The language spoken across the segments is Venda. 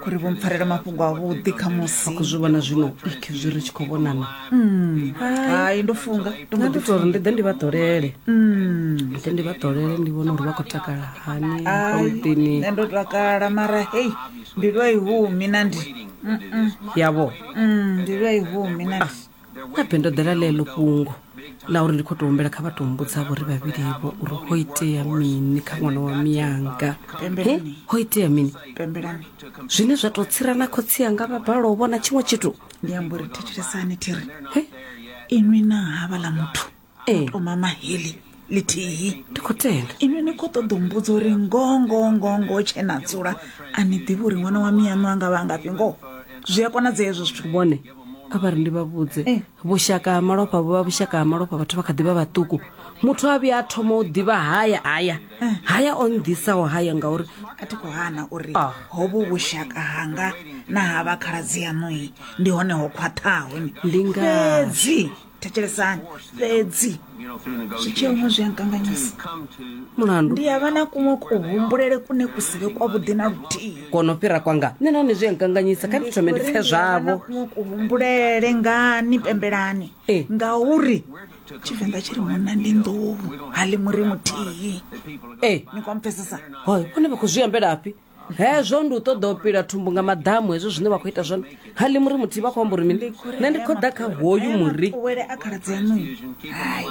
khori vho mpfarela mafhungo avhuḓi kha musi khou zwi vhona zwino ik zwi ri tshi khou vhonana hmm. hai ndo funga ndo mbo ḓi tori ndi ḓe ndi vha ḓolele hmm. ndi ḓe ndi vha ḓolele ndi vhona uri vha khou takala hani amuḓini nṋe ndo takala mara hei mbilu a i humi na ndi yavho hmm, mbilu a i humi na ndi ah. habe ndo ḓela ḽeḽo fhungo ḽa uri ndi khou tou humbela kha vha tou mbudzavho ri vhavhilivo uri ho itea mini kha ṅwana wa miyanga he ho itea mini zwine zwa tou tsira na khotsi anga vha bala u vhona tshiṅwe tshithu ndi amba uri thetshelesani thiri inwi na havha ḽa muthu Ee. u thoma mahili lithihi dokotela inwi ni khou ṱoḓa u mbudza uri ngoho ngoho ngoho ngoho tshe na dzula a ni ḓivhi uri ṅwana wa miyaṋu a nga vha a ngafhi ngoho zwi a konadzea hezwo zwithu vhone kha vha ri ndi vha vhudze Eh. vhushaka ha malofha vhu vha vhushaka ha malofha vhathu vha kha ḓi vha vhaṱuku muthu a vhuya a thoma u ḓivha haya haya Eh. haya o nnḓisaho haya ngauri a thi khou hana uri Ah. hovhu vhushaka hanga na ha vha khaladzi yaṋui ndi hone ho khwaṱhaho ni Ndi ngazwo. fhedzi thetshelesani fhedzi zwitshilomwe zwi a nkanganyisa mulandu ndi ya vha na kuṅwe kuhumbulele kune ku si vhe kwavhuḓi na luthihi kono fhira kwanga nṋe nahone zwi a nkanganyisa kha ndi thome ndi pfe zwavho kuṅwe kuhumbulele ngani pembelani Eh. ngauri tshivenḓa tshi ri munna ndi nḓou ha ḽi muri muthihi ee ni kwampfesesa hoyo vhone vha khou zwi ambelafhi hezwo ndi u ṱoḓa u pila thumbu nga maḓamu hezwo zwine vha khou ita zwone ha ḽi muri muthihi vha khou amba uri mini nṋe ndi khou ḓa kha hoyu muri wele a khaladzi aṋu hai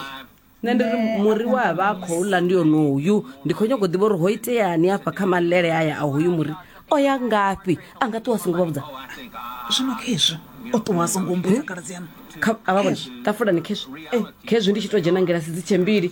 nṋe ndi ri muri we a vha a khou ḽa ndi onoyu ndi khou nyanga u ḓivha uri ho iteani afha kha malele aya a hoyu muri o ya ngafhi a nga ṱuwa a songo vha vhudza zwino khezwi o ṱuwa a songo mbudza khaladzi aṋu Kha- a vha vhona ṱafulani khezwi khezwi ndi tshi tou dzhena ngilasi dzi tshe mbili